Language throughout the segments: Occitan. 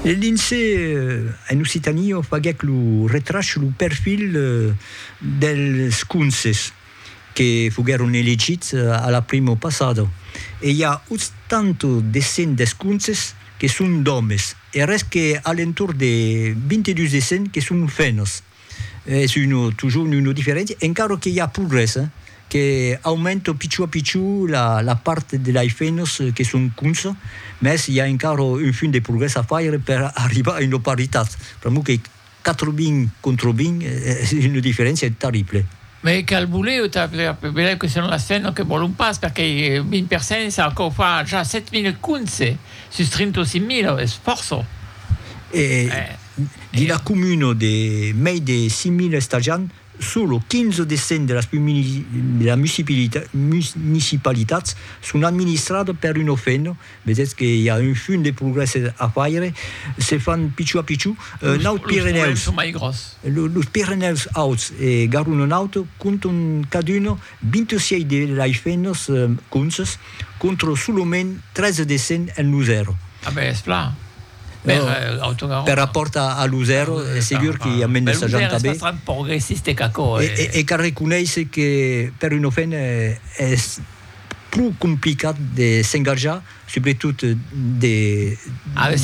Le lince en Occitanie o faguèc lo retrach lo perfil dels conses que foguèron elegits a la primo passada e i a 80 de 100 des conses que son d'òmes e res que a l'entorn de 22 de 100 que son femnas. es uno toujours uno diferent encara que i a progrès hein que aumenta pichó a pichó la la part de lei femnas que son cons mès i a encara un fum de progrès a faire per arribar a una paritat pr'amor que 80 contra 20 es una diferéncia terrible. Mès e cal voler o tal velèu que son las femnas que vòlon pas perquei 20 per 100 ça encore fa ja 7000 cons sus 35.000 es fòrça eh Dins la comuna de mei de 5.000 estajants, solo 15 o 10 cents de las municipalitats son administradas per un OFEN, vedètz que i a un fum de progrès a faire, se fan pichó a pichó. Naut Pirenèus, los Pirenèus Auts e Garona Naut comptan cadun 26 de l'AIFENOS conces, contra solament 13 de cents en Losèro. A ben, es plan! Per autocarro. Per rapòrt a Luzèro, es segur que i a mens de 60 abés. Luzèro es bastant progressiste qu'aquò. E qu'arreconeisse que per un ofent es pro complicat de s'engajar, subretot de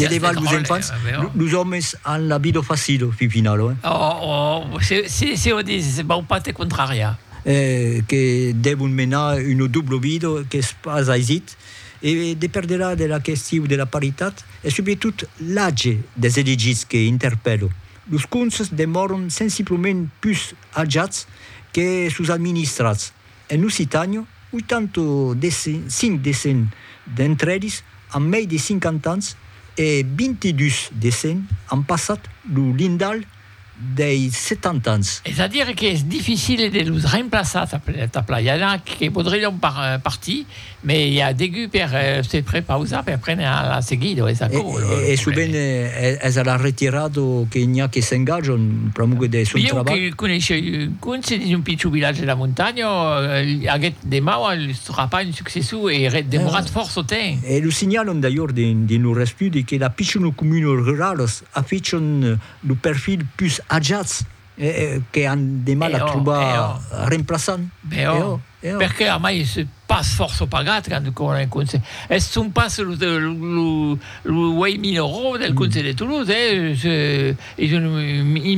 levar los enfants. Los òmes an la vida facila, fin finala. Oh, si o dis, se vau pas te contrariar. Que devon menar una dobla vida qu'es pas aisit. E deperderà de la question de la paritat e subretot l'atge des elegits que interpèlo. Los conselhs demòron sensiblament pus ajats que sos administrats. En Occitània, 85 de cent d'entre eles an mei de 50 ans e 22 de cent an passat lo lindalh dei 70 ans. Es a dire que es dificile de los remplaçar tap tap la, i a na que podrion par partir, me i a degut per se prepausar per prene a la seguida, es aquò lo problème. E sovent es a la retirada que n'i a que s'engajan pr'amor de son trabalh. Ieu que coneishei un conse dins un pichon vilatge de la montanha, aguèt de mau a los trapar un successor e ret demorat fòrça temps. E lo signalan d'ailleurs dins lor estudi que la pichona comuna ruralas Afichon lo perfil pus ajats que an de mal a trobar remplaçant. Però, perqué a mai se pas fòrça pagat quand coma en conselh. Es son pas lo uèi minorau del conselh de Toulouse, es un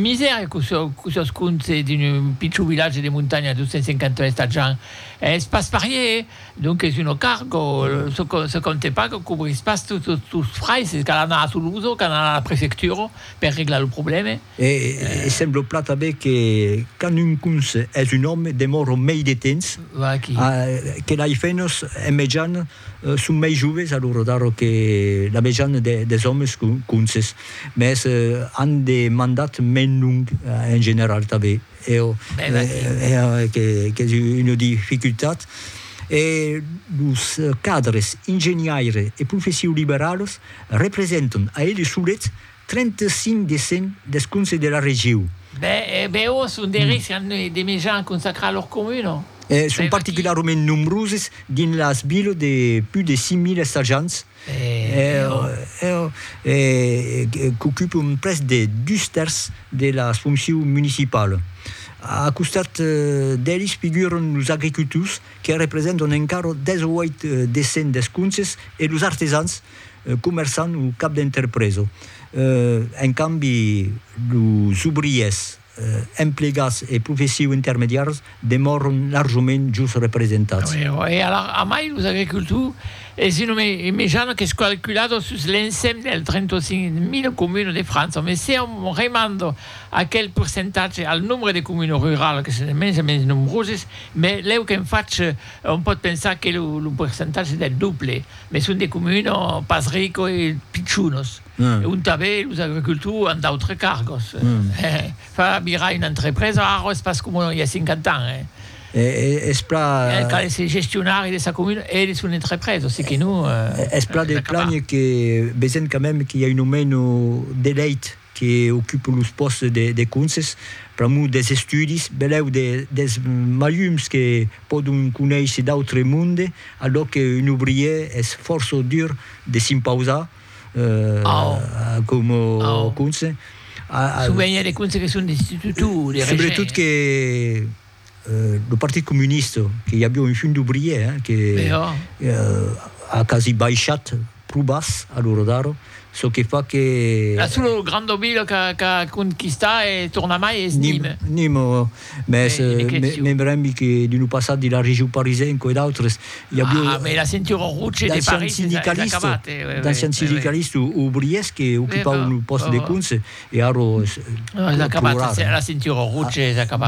misèri que sos conselh d'un pichon vilatge de montanha de 253 ajants. Es pas parier. Donc es un cargo, se compte pas que cobrís pas tots los frais, se cal anar a Toulouse o cal anar a la prefectura per reglar lo problème. E sembla plan tanben que quand un conse es un òme demòra mei de temps que lai fènos en mejan son mei joves a lor edar que la mejan des òmes conses, mès an de mandat mei long en general tanben. Eo qu'es una dificultat e los cadres ingeniaire e profession liberales representan a eles solets 35 de 100 des conselhs de la regiu. Bèu son dereits an de mejan consacrar lor comuna. Son particularament nombroses dins las viles de pus de 5.000 estajants. E qu'ocupon près de dus tèrç de las foncius municipala. A costat d'elis figuran los agricultors que representan encara 18 de cent des comptes e los artesans, comerçants o cap d'entrepresa. En cambi, los obriers emplegats e professius intermediars demòron larjament jos representats. E alara, amai los agricultors, es un nombre immejana qu'es calculada sus l'ensèm dels 35.000 comunes de França, mes se òm remanda aquel percentatge al nombre de comunes ruralas que son de mens en mens nombroses, mes lèu qu'en fach òm pòt pensar que lo percentatge es del doble, mes son de comunes pas ricas e pichonas. e ont tanben los agricultors an d'autres cargos. Far mirar una entrepresa ara es pas coma i a 50 ans. Cal èsser gestionari de sa comuna e de son entrepresa, seque non es pas acabar. Es plan que vesèm quand mème qu'i a un aument d'elèit que ocupe los pòstes de conses pr'amor dels estudis, benlèu dels malhums que pòdon conéisser d'autres mondes, a lòc qu'un obrièr es fòrça dur de s'impausar. Como conse. Su venia de conse que son destitutu o de regent. Subretot que lo Partit Comunista, que i aviá un Fun d'Obrier, que a quasi baishat pro bas a l'ora d'ara, çò que fa que. La sola granda vila qu'a conquistat e tornamai es Nîmes. Nîmes. Mès me brembi que d'un lo passat de la Region Parisen coi d'autres i avió d'ancian sindicalist, d'ancian sindicalist obriers que ocupavan lo pòst de cons e ara plorar.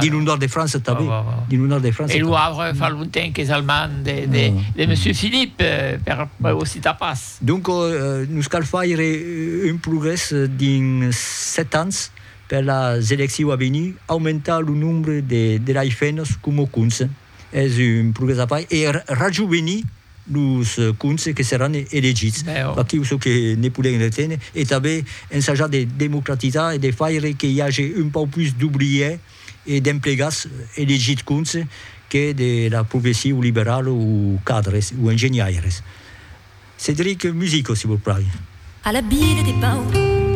Dins lo nòrd de França tanben. Dins lo nòrd de França tanben. E lo Havre fa longtemps qu'es almand de monsieur Philippe per o citar pas. Donc nos cal faire un progrès dins 7 ans. Per las elecciu a venir, aumentar lo nombre de delai fennos coma cons es un progrès a fai e rajovenir los cons que seràn elegits. Aquiu çò que ne podèm reténer e tanben ensajar de democratizar e de faire que i age un pauc pus d'obrièrs e d'emplegats elegits cons que de la professiu liberala o cadres o engenhaires. Cédric Musico, si vos plai. A la vila de Pau.